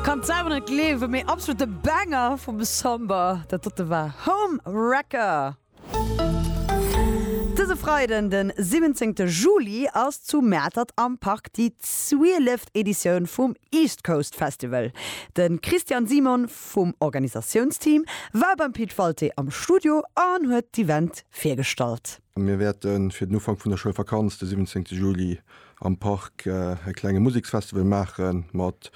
Kann selwer net gleewen, mee absolute Banger vum Samba. Dat dote war Home Wrecker. Dëse Freiden, den 17 Juli, ass zu Mäertert am Park déi 12 Editioun vum East Coast Festival. De Christian Simon vum Organisatiounsteam war beim Pit Walté am Studio an huet d'Event virgestallt. Mir wäerten fir den Ufank vun der Schoulvakanz, de 17 Juli, am Park e klenge Museksfestival maache mat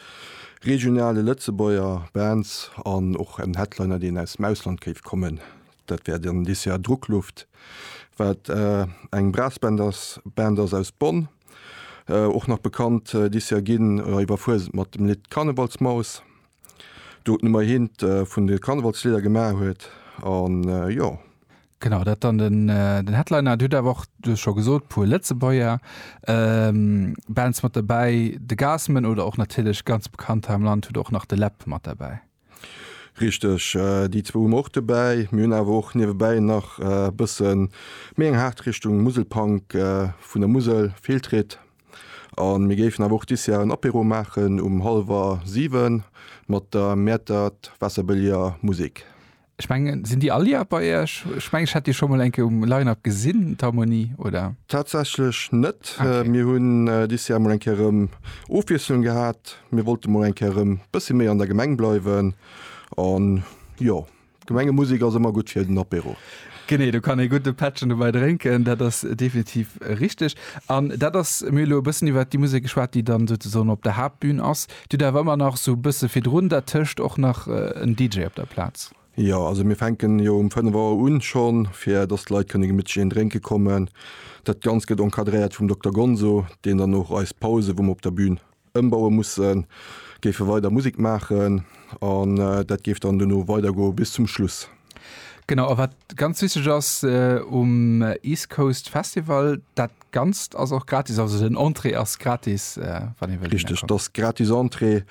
regionale Lëtzebuerger Bands an och en Headliner, deen aus dem Ausland géif kommen. Dat wär dann dës Joer Druckluft, wat eng Brassband ass, Band ass aus Bonn, och nach bekannt dës Joer ginn iwwer Fuesent mat dem Lidd Karnevalsmaus, do d'Nummer eent vun de Karnevalslidder gemaach huet an jo. Genau, dat dann den, den Headliner. Et huet awer och, du hues scho gesot, puer Lëtzebuerger ähm, Bands mat derbäi. De Gassman oder och natierlech ganz bekannt hei am Land, huet och nach de Läb mat derbäi. Richteg, déi zwou hu mer och dobäi. Mir hunn awer och niewebäi nach e bësse méi eng haart Richtung Muselpunk vun der Musel, Fehltritt. A mir géifen awer och dis Jar en Apéro maachen um hallwer siwe mat der Mäertert Wasserbëlliger Musik. Ech mengen, sinn déi all Joer bei Iech? Ech mengen, ech hätt déi scho mol eng Kéier um Line-Up gesinn, d'Harmonie, oder? Tatsächlech net. Okay. Mir hunn dis Joer mol eng Kéier erëm Ofwiesslung gehat. Mir wollte mol eng Kéier erëm bëssi méi an der Gemeng bleiwen. An jo, Gemengemusek ass ëmmer gutt fir den Apéro. Genee, do kann ee gudde Pättchen dobäi drénken, dat ass definitiv richteg. An dat ass, mir hu lo e bëssen iwwert déi Musek geschwat, déi dann souzesoen op der Haaptbün ass. Dir hutt awer ëmmer nach sou bësse virdrun dat tëscht och nach en DJ op der Plaz? Jo, also mir fänken jo um 5 Auer un schonn, fir dass d'Leit kënne gemittlech een drénke kommen. Dat Ganzt gëtt encadréiert vum Dokter Gonzo, deen dann och eis Pause, wou mer op der Bün ëmbaue mussen, géife weider Musek maachen an dat géif dann duerno weidergoe bis zum Schluss. Genau, a wat ganz wichteg ass um East Coast Festival, dat Ganzt ass och gratis, also den Entrée ass gratis, wann ee wëllt dohinner kommen. Richteg, et ass gratis Entrée.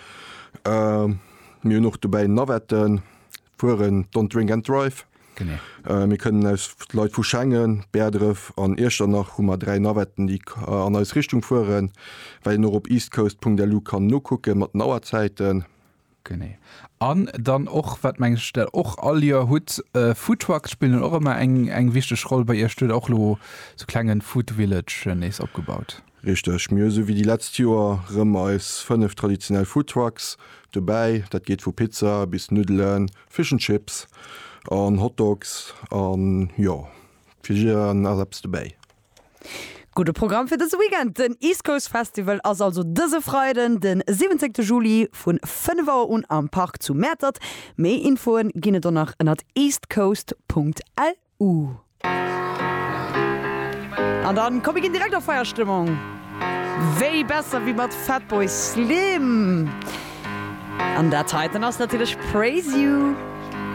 Mir hunn och dobäi Navetten, fueren Don't Drink and Drive. Genee. Mir kënnen aus, Leit vu Schengen, Bäerdref an Iechternach hu mer dräi Navetten, déi an eis Richtung fueren, well een och op eastcoast.lu kann nokucke mat den Auerzäiten. Genee. An dann och, wat meng ech der och all Joer hutt, Foodtrucks spillen och ëmmer eng, eng wichteg Roll bei Iech. Du hutt och elo sou klengen Food Village nees opgebaut. Richteg. Mir hu sou wéi déi letzt Joer rëm eis 5 traditionell Foodtrucks dobäi. Dat geet vu Pizza bis Nuddelen, Fish and Chips an Hotdogs an jo, fir jiddereen ass eppes dobäi. Gudde Programm fir dëse Weekend! Den East Coast Festival ass also dëse Freiden, den 17 Juli vu 5 Auer un am Park zu Mäertert. Méi Infoe ginn et donnach ënnert eastcoast.lu. An da komm mir ginn direkt a Feierstëmmung, wéi besser wéi mat Fatboy Slim. An dat heiten ass natierlech Praise You.